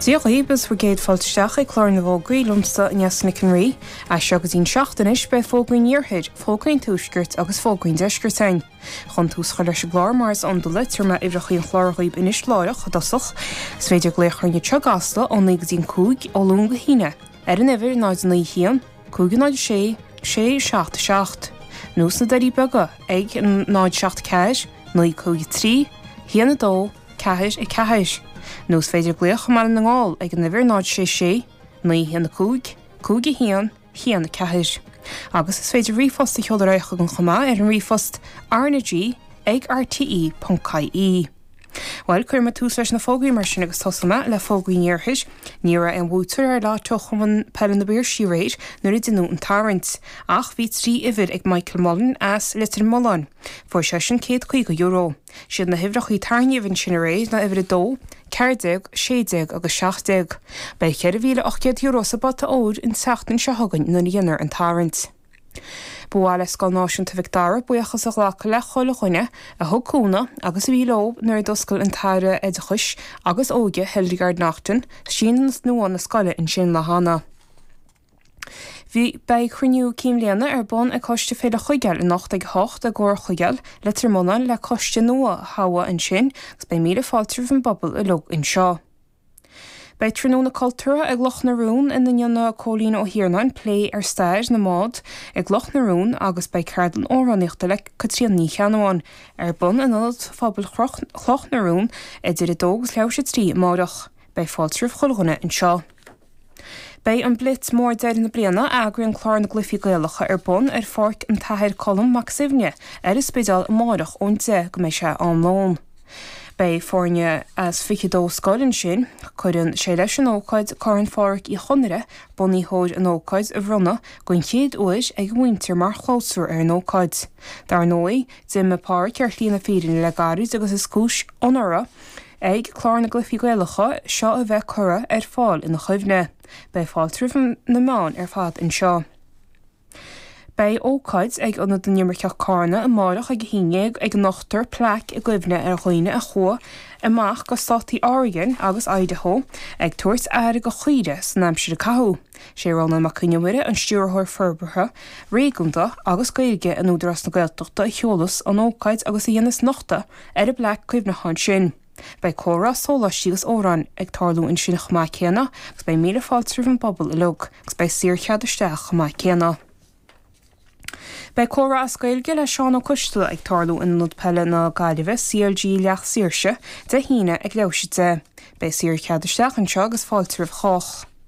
Dia dhaoib is bhur gcéad fáilte isteach ag Clár na bhFógraí liomsa, Nessa Nic an Rí. As seo go dtí'n seacht anois beidh fógraí an Iarthair, fógraí an Tuaiscirt agus fógraí an Deiscirt ann. Chun tús a chur leis an gclár mar is iondúil tabharfaidh mé uimhreachaí an chláir dhaoib anois láithreach, i dtosach. Is féidir glaoch orainn i gCasla ó naoi go dtí'n cúig, ó Luan go hAoine, ar an uimhir 091 506 677 nó sna Doirí Beaga ag 074 953 12. ceathair a ceathair, nó is féidir glaoch i mBaile na nGall ag an uimhir náid sé sé naoi a haon a cúig cúig a haon haon a ceathair. Agus is féidir ríomhphost a sheoladh ar chugainn chomh maith ar an ríomhphost rnag ag rte ponc ie. Bhuel, cuirfidh mé tús leis na fógraí mar sin agus tosóidh mé le fógraí an Iarthair. Ní raibh aon bhuaiteoir ar lotto Chumann Peile na bPiarsaí aréir nuair a déanadh an tarraingt. Ach bhí trí uimhir ag Michael Mullen as Leitir Mealláin. Fuair seisean céad caoga euro. Siad na huimhreachaí a tarraingíodh ansin aréir ná uimhir a dó, ceathair déag, sé déag agus seacht déag. Beidh cheithre mhíle ocht gcéad euro sa bpota óir an tseachtain seo chugainn nuair a dhéanfar an tarraingt. Ba mhaith le Scoil Náisiúnta Mhic Dara buíochas a ghlacadh le chuile dhuine a thug cúnamh agus a bhí leo nuair a d'oscail an tAire Oideachais agus Óige, Hildegarde Naughton, síneadh nua na scoile ansin le deireanas. Beidh cruinniú cinn bhliana ar bun ag Coiste Féile Chuigéil anocht ag 8 i gComhar Chuigéil, Leitir Mealláin le coiste nua a thoghadh ansin agus beidh míle fáilte roimh an bpobal uilig anseo. Beidh tráthnóna cultúrtha ag Cloch na Rón ina ndéanfaidh Cóilín Ó hIarnáin plé ar stair na mbád i gCloch na Rón agus beidh ceardlann amhránaíochta le Caitríona Ní Cheannabháin ar bun in Ionad Phobail Chloch na Rón idir 2 agus leathuair 's a trí amáireach. Beidh fáilte roimh chuile dhuine anseo. Beidh an blitz mór deireadh na bliana a eagraíonn Clár na gCluichí Gaelacha ar bun ar Pháirc an tAthair Colm Mac Suibhne ar an Spidéal amáireach ón 10 go mbeidh sé am lóin. Beidh foirne as 22 scoil ansin. Cuireann sé leis an ócáid Corn Phádraic Uí Chonaire, bunaitheoir an ócáid, a bhronnadh den chéad uair ag a mhuintir mar chlabhsúr ar an ócáid. Dar ndóigh, d'imigh Pádraic ar shlí na fírinne le gairid agus is cúis onóra ag Clár na gCluichí Gaelacha seo a bheith curtha ar fáil ina chuimhne. Beidh fáilte roimh na meáin ar fad anseo. Beidh ócáid ag Ionad na nImirceach Carna amáireach ag a haon déag ag nochtadh plaic i gcuimhne ar dhaoine a chuaigh amach go Státaí Oregon agus Idaho ag tabhairt aire go chaoirigh san aimsir a caitheadh. Sé Rónán Mac Con Iomaire an Stiúrthóir Forbartha Réigiúnda agus Gaeilge in Údarás na Gaeltachta a sheolas an ócáid agus a dhéanas nochtadh Ar an bplaic cuimhneacháin sin. Beidh comhrá, sóláistí agus amhráin ag tarlú ansin chomh maith céanna agus beidh míle fáilte roimh an bpobal uilig agus beidh saor chead isteach chomh maith céanna. Beidh comhrá as Gaeilge le Seán Ó Coistealla ag tarlú in Ionad Peile na Gaillimhe, CLG Liam Mellows, Dé hAoine ag leathuair th'éis a deich. Beidh saor chead isteach anseo agus fáilte roimh chách.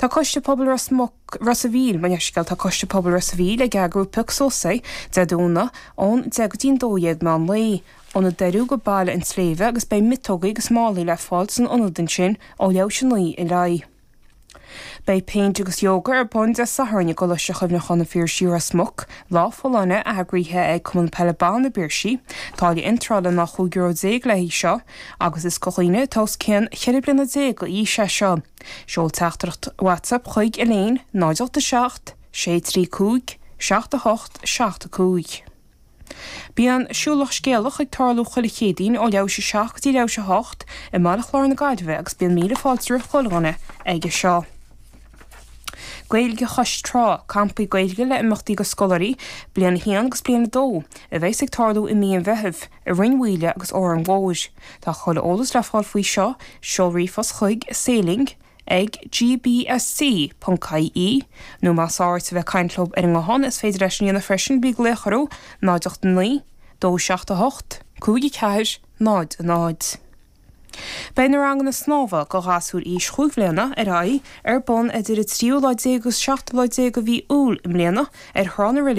Tá Coiste Pobail Ros Muc, Ros a' Mhíl, mo leithscéal, tá Coiste Pobail Ros a' Mhíl ag eagrú Pioc Suas Dé Domhnaigh ón 10 go dtí'n 12 meán lae, ó na Doiriú go Baile an tSléibhe agus beidh miotógaí agus málaí le fáil san ionad ansin ó leathuair th'éis a 9 i leith. Beidh péint agus yoga ar bun Dé Sathairn i gColáiste Chuimhneachán an Phiarsaigh Ros Muc, lá folláine eagraithe ag Cumann Peile Ban na bPiarsach, táille iontrála ná €15 le haghaidh seo, agus is go dhaoine atá os cionn cheithre bliana déag d'aois é seo. Seol teachtaireacht WhatsApp chuig Elaine, 087 635 78 75. Bíonn siúlach scéalach ag tarlú chuile Chéadaoin ó leathuair th'éis a 7 go dtí leathuair th'éis a 8 i mBaile Chláir na Gaillimhe agus bíonn míle fáilte roimh chuile dhuine aige seo. Gaeilge Chois Trá, Campaí Gaeilge le imeachtaí go scoláirí bliain 1 agus bliain 2, a bheas ag tarlú i mí an Mheithimh i Rinn Mhíl agus Órán Mór. Tá chuile eolas le fáil faoi seo, seol ríomhphost chuig, sailing ag gbsc.ie, nó más fearr leat a bheith caint leo ar an nguthán is féidir leat sin a dhéanamh freisin, bí ag glaoch orthu, 089 278 5400. Beidh na ranganna snámha do ghasúir aois chúig bliana ar aghaidh ar bun idir an tríú lá déag agus seachtú lá déag de mhí Iúil i mbliana ar Thrá na Reilige.